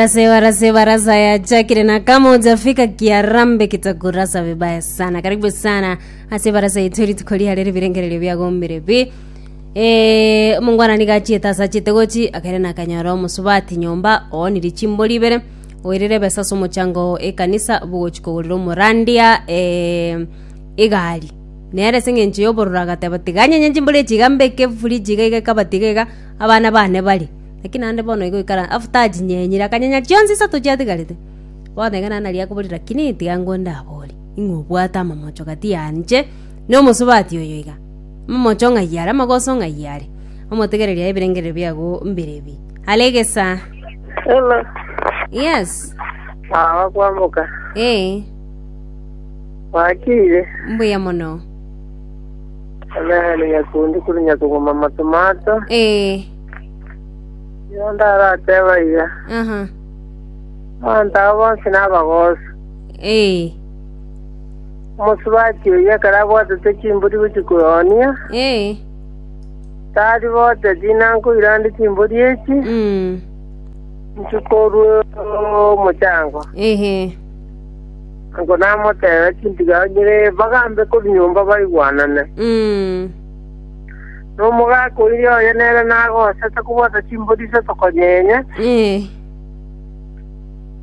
Rase warase baraza ya chakire na kama ujafika kiarambe kitakurasa vibaya sana karibu sana ase baraza yetu rituko riarere birengererio biagombire bi Eh, omongwana niga achiete ase achiete gochi akere nakanyora omosubati nyomba ooniri chimbori ibere oirire ebesa ase omochango ekanisa bogochi kogorera omorandia eh, egari nere ase eng'encho y'obororo agateba tiga anyenye chimbori echi iga mbeke efuriji iga iga ekabati iga iga abana bane bare Naki naende bono igo oikaransete, after achinyenyire, akanyenya chionsi isato chiatigarete. Bono iga naende nari akoboria, lakini tiga ngwe ndaborie, ing'we obwate amamocho gati yanche na omosubati oyo iga? Amamocho ng'ai are, amagoso ng'ai are? Omotegereri aye ebirengerero biago mbire ebi. Are egesaa. Hello. Yes. Mama kwamboka. Eh, Wakire. mbuya mono. Nani nyakundi kuri nyakuguma matomato. Eh. Nigo ndarateba iga, Aha. abanto aba bonsi nabagosu. Eh. Omosubati oyio ekero abwatete chimbori gochia koyonia, Eh. tari bote tinankoirande chimbori echi, Mm. nchikorwe omochango. Ehe. Ango namotebe chintigao nyire bagambe kori nyomba baigwanane. Mm. na omogaka o iria oye nere nagosete kobwata chimbori iso tokonyenya,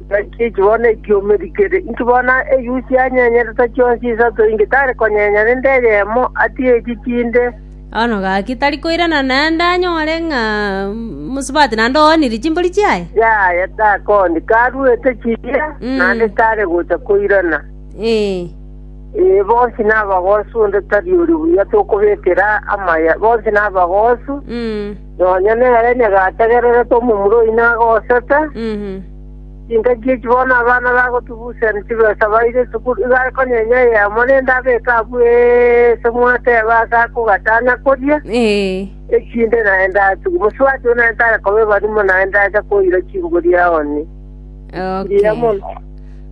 naki eki bono ekiomeri kere inki bono eyusi anyenyerete chionsi isato inki tari konyenya rende eyemo atige echi chinde? Bono gaki tari koirana naende anyore ng'a mosubati naende oonirie chimbori chiaye? Yaya, takooni, karuete chiria, naende tare gocha koirana. Ee. Ee, bonsi nabagoosu, onde tari ore buya tokobekera amaya, bonsi nabagoosu. Nonya nere nyagategererete omomura oyio nagosete, chingaki echi bono abana bagotugusiani chibesa baire esukuru, igo akonyenya eyemo rende abeke abwo eese mwateba ase akogachanya koria, echinde naye ndachigwe. Mosubati oo naye tare koba ebarimo naye ndacha koira chinguru yaoni. Mbuya mono.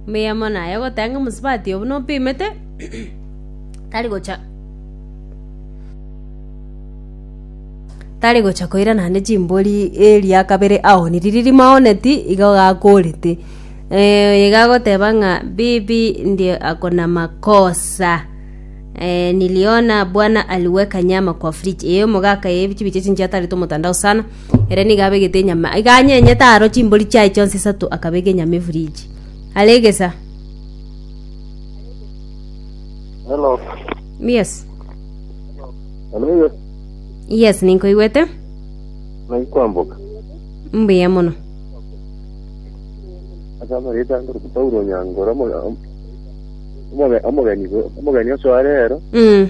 Omonyama one aye ogoteba ng'a omosubati oo buna opimete, tari gocha tari gocha koira naende chimbori eria kabere aoniri riria maoneti igo gakorete. oyo iga agoteba ng'a bibi ndiye ako na makosa niliona bwana aliweka nyama kwa fridge eyi omogaka eyi ebichu biacha chinche atarete omotandao sana. Ere nigo abegete enyama, iga anyenyete aro chimbori chiaye chionsi isato, akabeka enyama efridge. Are egesa. Hello. Yes. Hello, yes. Yes, ninkoigwete. Naki kwamboka. Mbuya mono. Asa amareta ngoro Paulo Nyangoro omo- om- omogeni omogeni oso arero Mm.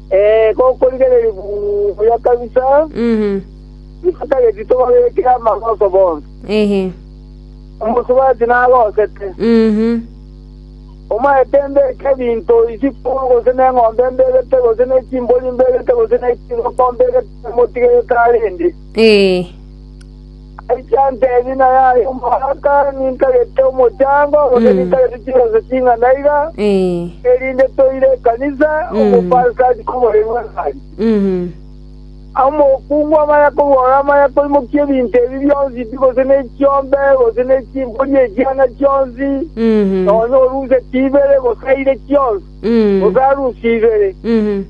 Ee, gokorigereria buya kabisa, Mhm. igo tageti tobabekire amaroso bonsi. Ehe. Omosubati narosete, Mhm. omaete mbeke ebinto isiko gose neng'ombe mbegete gose ne chimbori mbegete gose ne chingoko mbegete motigerete arende. Ee. Agachia anteebia, Naye aye omogaka, nintagete omochango, gose nintagete chibesa ching'ana iga, Eh. erinde toire ekanisa, Mm. omopastor achike omoremi bw'engaari. Mhm. Omokungu amanya kobora, amanya koimokia ebinto ebi bionsi pi, gose ne chiombe, gose ne chimbori echiana chionsi, Mhm. nonya oruse chibere, gose aire chionsi, Mm. gose arusie ibere. Mhm.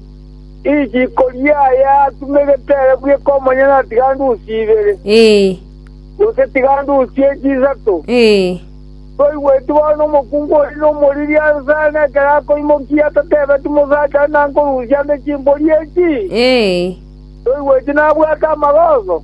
Riiko riaye atume egeteere bweka omonyene na tigandusi ibere, gose tigandusi echi isato. Toigweti bono omokungu oria nomoriri ase aane ekero akoimokia atatebeti mosacha onde nankorusia nde chimbori echi? Toigweti nabwate amagoso?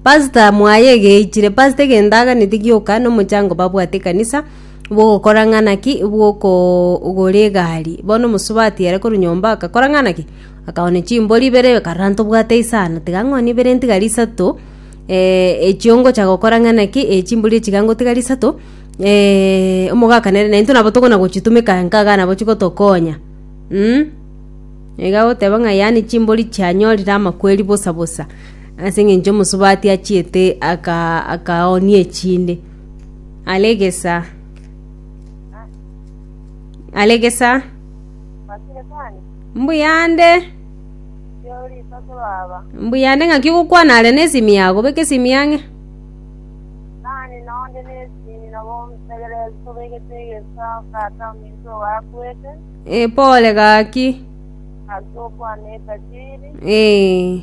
Pastor mwaye egeichire, pastor egento aganetie gioka nomochango babwate ekanisa bwogokora ng'ana ki bwokogora egari. Bono omosubati ere korwa nyomba agakora ng'ana ki? Akagora ne chimbori ibere akarora ntobwate isano tiga ng'oni ibere ntigari isato echio ngocha gokora ng'ana ki chimbori echio iga ngotigari isato omogakano ere naintwe nabo tokona gochitumeka nka iga nabo chigotokonya iga goteba ng'a yaani chimbori chianyorire amakweri bosa bosa. Ase engencho omosubati achiete aka- akaoonia echinde. Are egesa. Are egesa. Mbuyande. Mbuyande ng'aki ogokwana are na esimi yago beka esimi ang'e. Eh, pole gaki. Eh.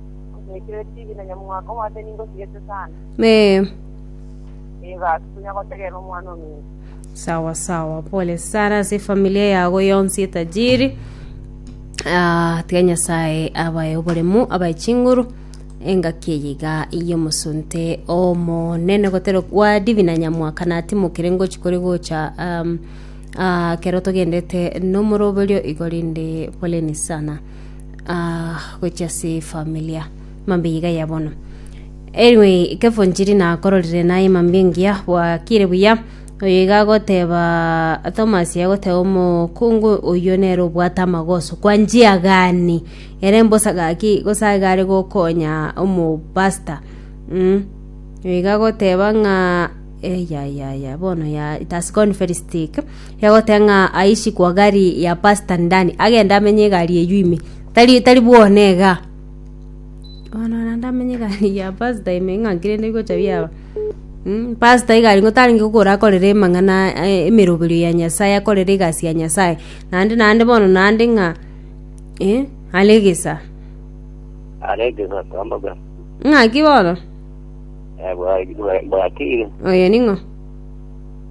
Ogoikire chibi na nyamwako omoate ningo osigete sana. Ee, Nigo ase tonya gotegerera omwana ominto. sawa sawa pole sana ase efamilia yago yonsi etajiri Ah, tiga nyasaye abaye oboremu abaye chinguru engaki eyiga y'omosunte omonene gotero kwa divina nyamwaka natimokire ngochi kore gocha um, ah, kero togendete nomoroberio igo rinde poleni sana uh, gochia ase familia mambe iga ya bono anyway ikefo njiri nakororire naye mambe ngiya bwakire buya oyo iga agoteba thomas agoteba omokungu oyo nere obwate amagoso kwa njia gani ere mbosa gaki gosaiga are gokonya omopasta mm. iga agoteba ng'a eyayaya bono ya it has gone very stick Egoteba ng'a aichi kwa gari ya Pastor Ndani, agende amenye egari eyio ime. Tari, tari bwona ega. Bono naende amenye egari ya Pastor ime ng'a nki rende bigocha biaba. Mm, Pastor egari ng'o tarenge kogora akorere emang'ana eh, emeroberio ya Nyasaye, akorere egasi ya Nyasaye. Naende, naende bono naende ng'a, eh, are egesa. aregesa tamboka Ng'aki bono? bwatire Oyo ning'o?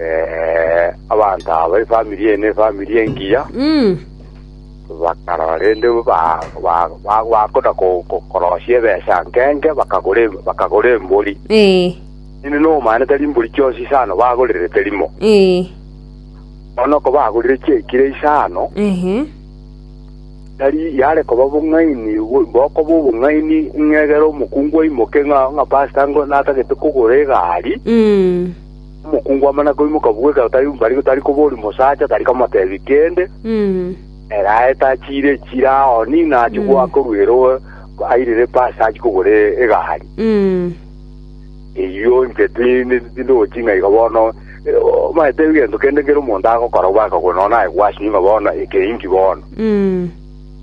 Eh, abanto aba efamiri eye n'efamiri engiya Mm. bakarora rende ba- ba- ba- bakoda ko- ko- korosia ebesa nkenge bakagora em- bakagora embori Eh. nini nomana tari mbori chionsi isano bagorire terimo Eh. bono ko bagorire chiekire isano Ehe. Tari yare koba bong'aini bokoba obong'aini ng'a egere omokungu aimoke ng'a ng'a pastor ngo natagete kogora egari. Mm. Omokungu amana koimoka bwo ekero tari bari tari koboria omosacha tari komotebia kende. Mm. Ere aete achiire echira aoni ng'a achie Mm. goakorwa ere o- airire pastor achie kogora egari. Mm. Eyio inche tindochi ng'a igo bono omaete egento kende kere omonto agokora obwakagwe nonya naye gwasio ng'a bono eke inki bono.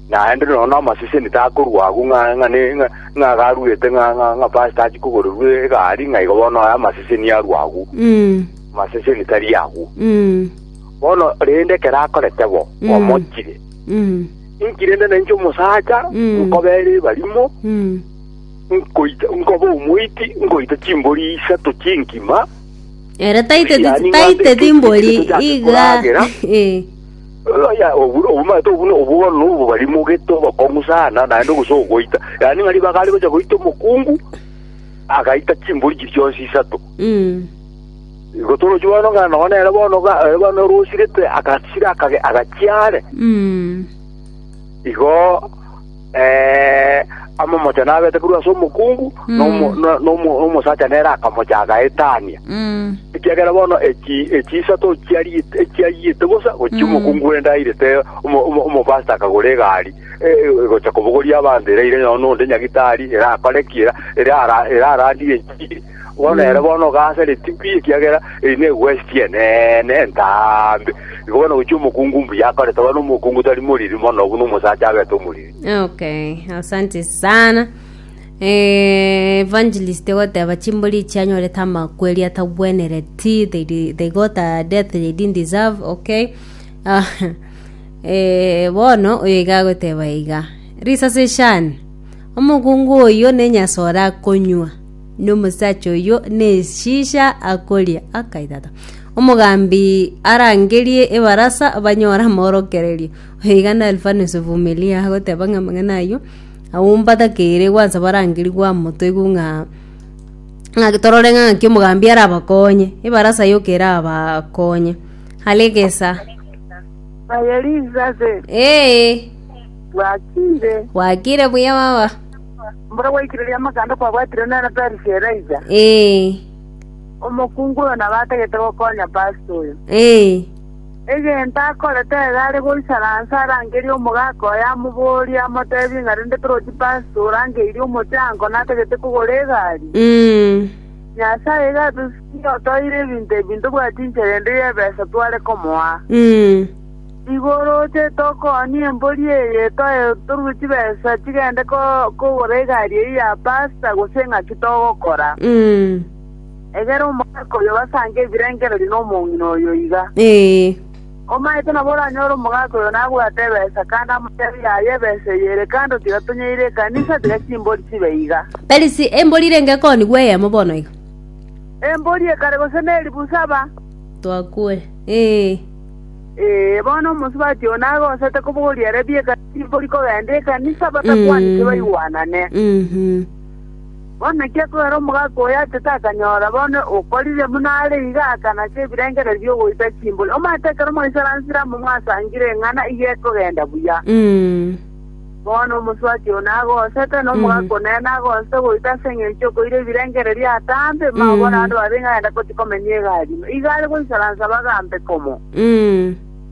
Naende nonya namaseseni takorwa agwo ng'a ng'a ne- ng'a- ng'a iga arwete ng'a ng'a ng'a pastor achie kogorerwa egari ng'a igo bono aye amaseseni arwa agwo amaseseni tari agwo bono rende ekero akorete bo omochire inki rende nainche omosacha nkobeere ebarimo nkoita, nkoba omoiti, nkoita chimbori isato chi'enkima, Ere taiteti Yaani ng'ande taiteti ekesi mbori ekesi yake iga koragera. Eh, oya obu obumate obuno obugono obo bari mogete obokong'u sana naende gose ogoita yaani ng'ari bagare gocha goita omokungu agaita chimbori chiri chionsi isato mm, igo torochi bono ng'a nogo nere bono ga- eh, bono orosirete agasira akage- agachiare mm, igo Eh, amomocha nabete korwa ase omokungu, Mm. na omo- na- na omo- na omosacha nere akamocha agaetania. Mm. Ekiagera bono eki- ekiisa tochiariete- echiayete bosa gochia Mm. omokungu ende airete omo- omo- omopasta akagora egari eh, eh, gocha kobogoria abanto ere aire nonya onde nyagitari ere akore ki era- ere ara- ere arandire enchiri Bono ere bono ogaasare tibi, ekiagera eye negwesiti eneene entaambe. Igo bono gochia omokungu mbuya akorete, bono omokungu tari moriri mono, buna omosacha abete omoriri. okay asante sana Eh, evangelist goteba chimbori echi anyorete amakweri atabwenereti they, di- they got a death they didn't deserve okay Ah, eh, bono oyo iga agoteba iga risase shani omokungu oyo nenyasore akonywa Nomosacha oyio neshisha akoria akaitata. Omogambi arangerie ebarasa banyore amorokererio. Oigana Elfanus Vumilia agoteba ng'a amang'ana ayio aumbatakeire gwansa barangeri gwamotoigwe ng'a ng'a torore ng'a ng'aki omogambi arabakonye ebarasa yoka erabakonye hare egesa Aye Elizabeth, ee bwakire. bwakire buya baba Mboro gwaikire amaganda kwabwatire nere Perisia eraisa. Ee. Omokungu oyo nabo atagete gokonya pastor oyo. Ee. Egento akorete iga are goichara nse arangerie omogaka oye amoborie amotebie ng'a rende torochi pastor orangeirie omochango natagete kogora egari. Mm. Nyasaye iga atosusirie otoire ebinto ebi ntobwati inchera ende y'ebesa tware komoa. Mm. Nigo oroche tokoonie embori eye, toruge chibesa chigende kogora egari eyio ya pasta, gose ng'aki togokora? Egera omogaka oyo obasange ebirengererio nomong'ina oyo iga. Omaete nabo oranyore omogaka oyo nabwate ebesa, kande amoteebe yaye ebesa eye ere kando tiga tonyeire ekanisa, tiga chimbori chibe iga. Perisi, embori irenge koonigwa eyemo bono iga. Embori ekare gose neribu saba. Twakure. Ee, bono omosubati oo nagosete kobogoria ere bieka timbori kogenda ekanisa batakwaneti Mm. baigwanane. Mhm. Bono naki akogera omogaka oyo ase takanyora bono okorire buna are iga akanasa ebirengererio bi'ogoita chimbori. Omanyete ekero Omoisrael nsire amo mwasangire eng'ana iga ekogenda buya. Mm. Bono omosubati oo nagosete, na omogaka o nere nagosete goita ase engencho y'okoira ebirengererio atambe, mao bono abanto babe ng'a aenda gochia komenya egari ime. Igo are goisaransa bagambe komo.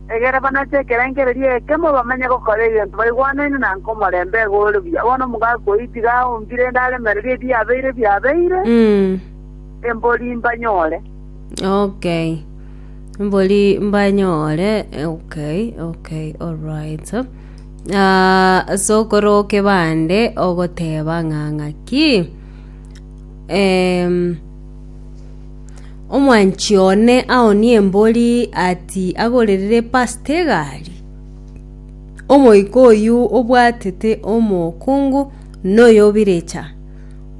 Egere banache ekerengererio ekemo, bamenye gokora egento baigwanaine na nkomorembe iga ore buya. Bono omogaka oyio tiga aombi rende aremererie ebiabeire biabeire, embori mbanyore. Okay. Mbori mbanyore, okay, okay, alright. Ase okorooke bande ogoteba ng'a ng'aki, omwanchi one aonie embori ati agorerere pastor egari, omoika oyio obwatete omokungu na oyo obirecha,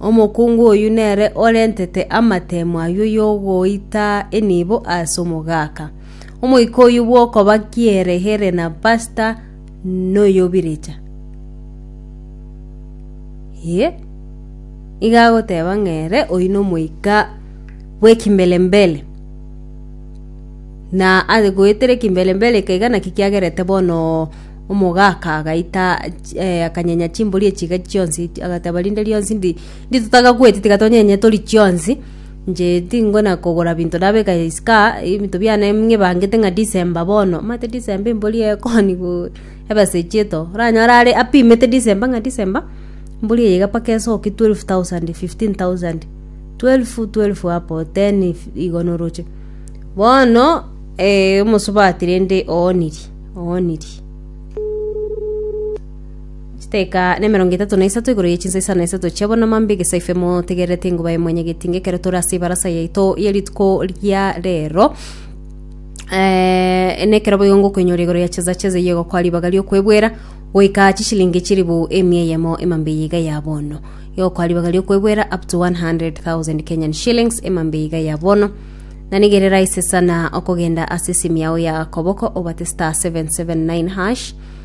omokungu oyio nere orentete amatemo ayio yogoita enibo ase omogaka. Omoika oyio bw'okoba kierehere na pasta noyobirecha. Ye. Iga agoteba ng'ere oyio nomoika bw'ekimbelembele. Na ase goetera ekimbelembele ekeiga naki kiagerete bono omogaka agaita chi- eh, akanyenya chimbori echiga chionsi agateba rinde rionsi ndi- nditotaga goeti tiga tonyenye tori chionsi. Inche tingona kogora binto nabeka isiko aa, ebinto biane ng'ebangete ng'a December bono, omanyete December embori ekoni go ebasage eto, oranyore are apimete December ng'a December, embori eye iga mpaka esoke twelve thousand, fifteen thousand, twelve twelve hapo, ten igo noroche. Bono omosubati rende oonirie, oonirie. Chiteka nemerongo etato na isato igoro ye chinsa isano na isato chia bonama mbe egesaife motegererete enguba ya mwenye getinga ekero tore ase ebarasa yaito ye rituko ria rero Eh, nekero boigo ngokoinyora igoro ya cheza cheza iye gokwa ribaga riokwebwera goika chishilingi chiribu emia eyemo emambe iga ya bono yokwa ribaga riokwebwera up to 100,000 Kenyan shillings emambe iga ya bono na nigere raise sana okogenda ase simu yao ya koboko obate star 779 hash